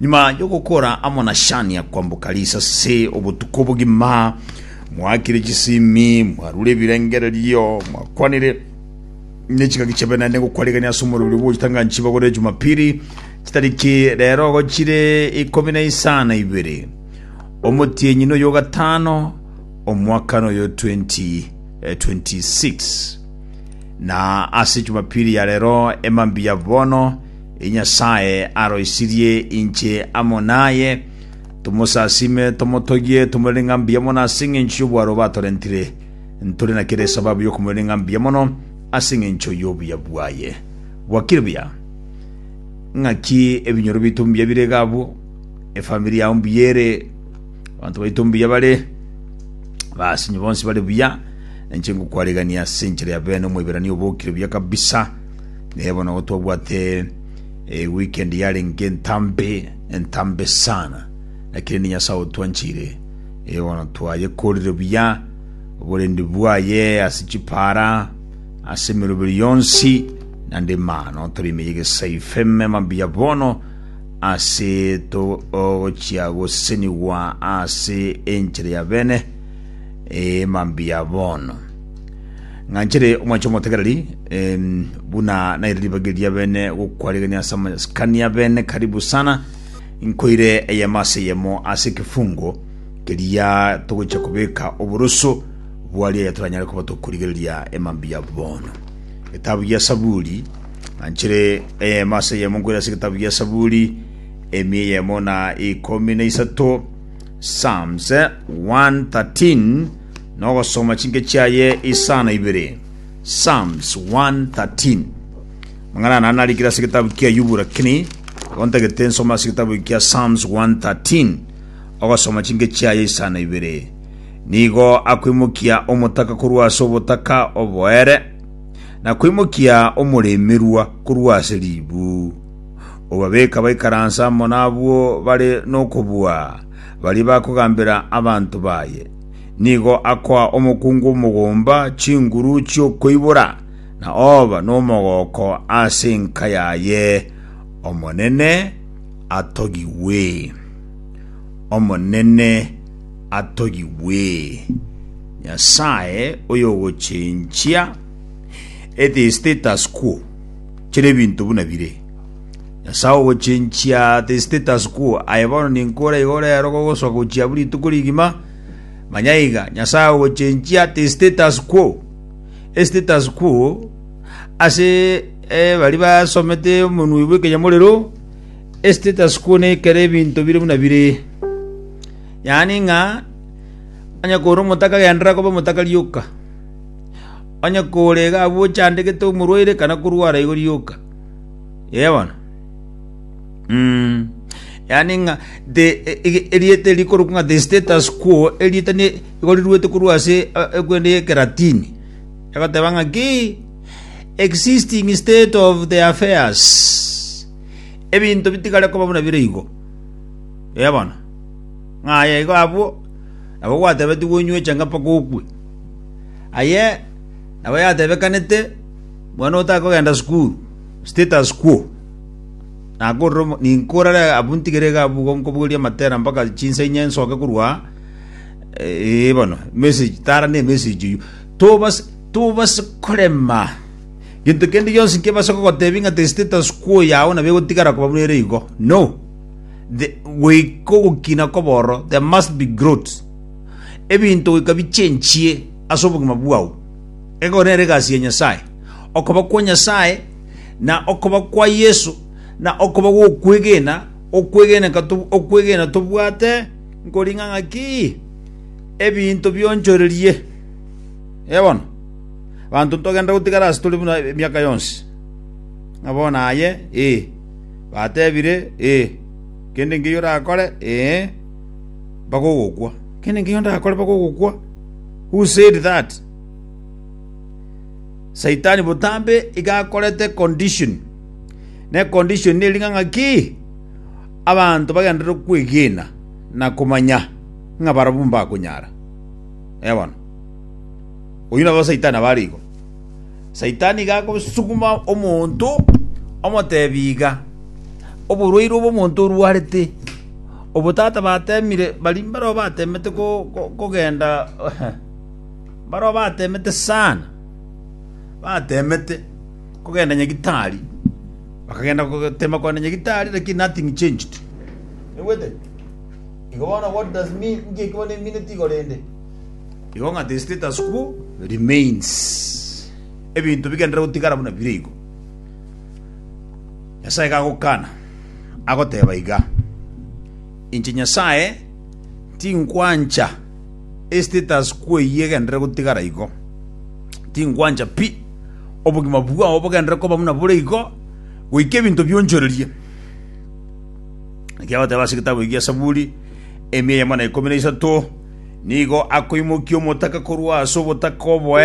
Nyuma y'ogokora amo na Shania kwamboka risase obotuko bogima, mwaakire chisimi, mwarure ebirengererio, mwakwanire nechingaki chiabenene gokwarigania ase omorero bw'ogotanga nchiba gore Jumapili chitariki rero gochire ikomi na isano ibere omotienyi noyo gatano omwaka noyo 2026 na ase Jumapili ya rero emambi ya bono E Nyasae aroisirie inche amo naye, tomosasime, tomotogie, tomorere ng'a mbuya mono ase engencho y'obwaro batorentire. Ntore na kera esababu y'okomorere ng'a mbuya mono ase engencho y'obuya bwaye. Gwakire buya? Ng'aki ebinyoro biaito mbuya bire iga abwo? Efamiri yao mbuya ere? Abanto baito mbuya bare? Basinyo bonsi bare buya? Inche ngokwarigania ase enchera ya bene Omoiberania obokire buya kabisa. Naye bono igo twabwate eh, weekend yarenge entambe entambe sana lakini ni nyasaye otwanchire eh, bono twayekorire buya oborendi bwaye ase chipara ase emeroberi yonsi nande mano tore imeye gesayifeme mabuya bono ase togochia gosenigwa ase enchera ya bene eh, mabuya bono Ng'anchere omwanche omotegereri em, buna naire ribagi ria bene gokwarigania ase amasikania bene karibu sana nkoire eyemo ase eyemo ase ekefungo keria togocha kobeka oboroso bwaria yatoranyare koba tokorigereria emambi ya bono getabu gia saburi ng'anchere eyemo ase eyemo nkoire ase getabu gia saburi emi eyemo na ikomi na isato psalms eh, 113 nogosoma chinke chiaye isano ibere. Psalms 113. Mang'ana nana narikire ase getabu kia Yubu lakini gontagete nsoma ase getabu kia Psalms 113 ogosoma chinke chiaye isano ibere. Nigo akwimokia omotaka korwa ase obotaka oboere na kwimokia omoremerwa korwa ase ribu. Obabeka baikaransa amo nabwo bare nokobua, baria bakogambera abanto baye. Nigo akoa omokungu omogomba chinguru chi'okoibora, na oba nomogooko ase enka yaye, Omonene atogigwe! Omonene atogigwe! Nyasae oyogochenchia, it is status quo, chire ebinto buna bire. Nyasae ogochenchia Thesitetas kwo, aye bono ninkore igo rero gogosoa gochia buri rituko rigima. Manya iga, Nyasae ogochenchia Thesitetas kwo, Esitetas kwo, ase eh, baria basomete omonwe bw'ekeyamorero, Esitetas kwo ne ekero ebinto bire buna bire. Yaani ng'a onye kore omotaka agenderera koba omotaka rioka, onye kore iga abwo ochandegete omorwaire kana korwara igo rioka. Yee bono. Mm. Yaani ng'a the e- e- erieta rikorokwa ng'a the status quo erieta ni igoriruete korwa ase eh, ekwende ye Kilatini. Egoteba ng'a ki existing state of the affairs. Ebinto bitigare koba buna bire igo. Yee bono. Ng'a aye igo abwo nabo gwatebetigwe onyweche ng'a mpaka okwe. Aye nabo yatebekanete Mwana otakogenda sukuru, status quo, nakorire omo- ninka orare abwo ntigere iga abwo nkobogoria matera mpaka chinsa inye nsoke korwa aa, eh, bono emessage tara na emessage eywo. Tobas- tobase korema gento kende gionsi nkebase gogotebia ng'a tari status quo yago nabo egotigara koba buna ere igo, no! The goika ogokina kobe ororo, there must be growth. Ebinto goika bichenchie ase obogima bwao. Ego nere egasi ya Nyasae, okoba kwa Nyasae, na okoba kwa Yeso, na okoba gw'okwegena, okwegeneka okwegena tobwate nkoringa ng'aki ebinto bionchorerie. Ebono banto ntogenda gotigara ase tore buna emiaka yonsi ng'a bono aye ee batebire ee kende nkeyo orakore ee bagogokwa kende nkeyo ndakore bagogokwa Who said that? Saitani botambe iga akorete condition. Na econdition neri ng'a ng'aki? Abanto bagenderere kwegena na komanya ng'a barabwo mbakonyara. Eh bono. Oyio nabo Saitani abare igo. Saitani iga agosuguma omonto, omotebi iga, Oborwaire obo omonto orwarete, obo tata bateemire baria mbareo bateemete kogenda mbareo bateemete sana, bateemete kogenda nyagitari, bakagenda goteema kogenda nyagitari lakini nothing changed. Naigwete? Igo bono what does mean inki eki bono emineti igoro ende? Igo ng'a the status quo remains, ebinto bigenderere gotigara buna bire igo. Nyasae gagokana, agoteba iga, Inche Nyasae tinkwancha estatus quo eyio egenderere gotigara igo. Tinkwancha pi, obogima bwao bogenderere koba buna bore igo, goika ebinto bionchorerie. Naki agoteba ase egetabu eki gia Zaburi, emia eyemo na ikomi na isato, nigo akoimokia omotaka korwa ase obotaka oboe,